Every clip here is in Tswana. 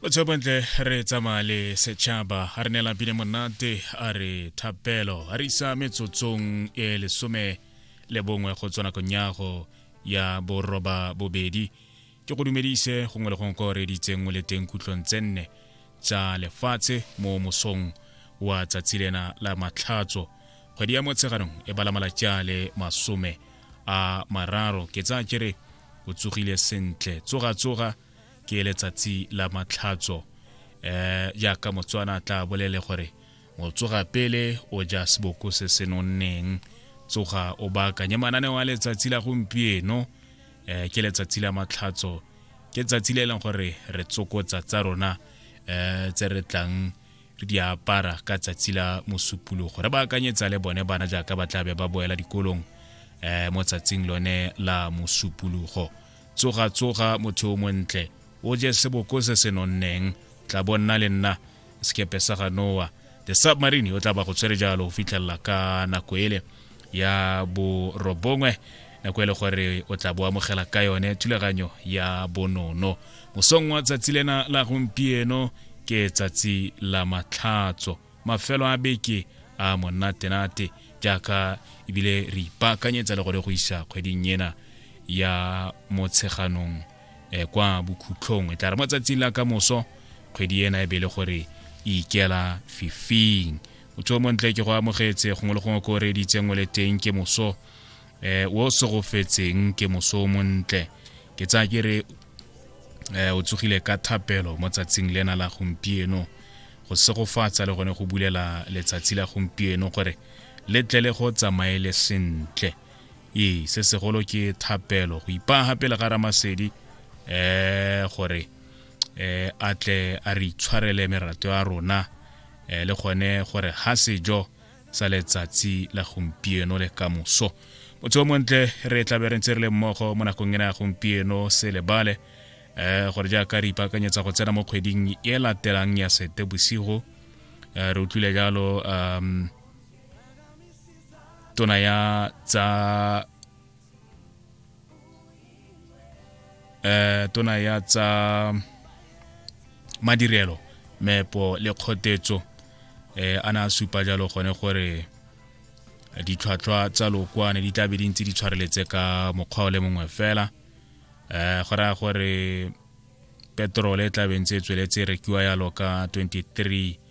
botshelo bontle re tsamaya le setšhaba a re neela pine monate a re thapelo a re isa metsotsong e lesome le bongwe go tswa nakong yago ya boroba bobedi ke go dumedise gongwe le gongwe ko reditseng o le teng kutlong tse nne tsa lefatshe mo mosong wa tsatsi lena la matlhatso kgwedi ya motsheganong e bala malatsi a le masome a mararo ke tsaya kere o tsogile sentle tsoga tsoga ke letsatsi la matlhatso eh jaaka motswana tla bolele gore o tsoga pele o ja seboko se se nonneng tsoga o baakanye mananeo a letsatsi la gompieno eh ke letsatsi la matlhatso ke tsatsi le e leng gore re tsokotsa tsa rona eh tse re tlang re di apara ka tsatsi la mosupologo re ba akanyetsa le bone bana jaaka ba tlabe ba boela dikolong um mo tsatsing lone la mosupologo tsoga tsoga motho o montle o je seboko se se nonneng tla bo nna le nna sekepe sa ga noa the submarine o tla ba go tshwere jalo go fitlhelela ka nako ele ya borobongwe nako e le gore o tla bo amogela ka yone thulaganyo ya bonono mosong wa tsatsi lena la gompieno ke tsatsi la matlhatso mafelo a beke a monatenate jaaka ebile re ipaakanyetsa le gore go isa kgweding ena ya motsheganong um kwa bokhutlhong e tla re mo tsatsing la ka moso kgwedi ena e be le gore e ikela fifing motho o montle ke go amogetse gongwe le gongwe ko o reeditseng o le teng ke moso eh o segofetseng ke moso montle ke tsa ke re eh o tsogile ka thapelo mo tsatsing lena la gompieno go segofatsa le gone go bulela letsatsi la gompieno gore le tle le go tsamaele sentle ee se segolo ke thapelo go ipaga pele ga ramasedi eh gore eh a tle a re itshwarele merato ya rona eh le gone gore ha sejo sa letsatsi la gompieno le ka moso motho o montle re tlabe re ntse re le mmogo mo nakong ena ya gompieno se lebale um gore jaaka re ipaakanyetsa go tsena mo kgweding e latelang ya sete bosigo um eh, re utlwile jalo um tona ya tsa eh tona ya tsa madirelo mepo le kgotetso eh a na supa jalo gone gore ditlhwatlhwa tsa lokwane di tlabe di ntse di tshwareletse ka mokgwa o le mongwe fela eh go raya gore petrol e tlabe ntse e tsweletse e rekiwa yalo ka 23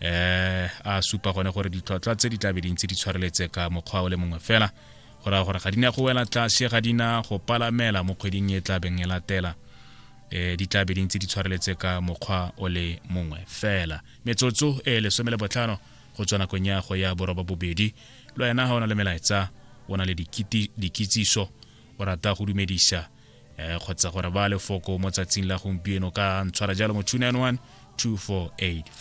eh a supa gone gore ditlhwatlhwa tse di tlabe dintse di tshwareletse ka mokgwa o le mongwe fela go raya gore ga di ne go wela tlase ga dina go palamela mo kgweding e tlabeng e latela um di tlabe dintse di tshwareletse ka mokgwa o le mongwe fela metsotso e lesome le botlhano go tswa nakong ya go ya boroba bobedi le wena ga o na le melaetsa o na le dikitsiso o rata go dumedisa um kgotsa gore ba lefoko mo tsatsing la gompieno ka ntshwara jalo mo 291 2485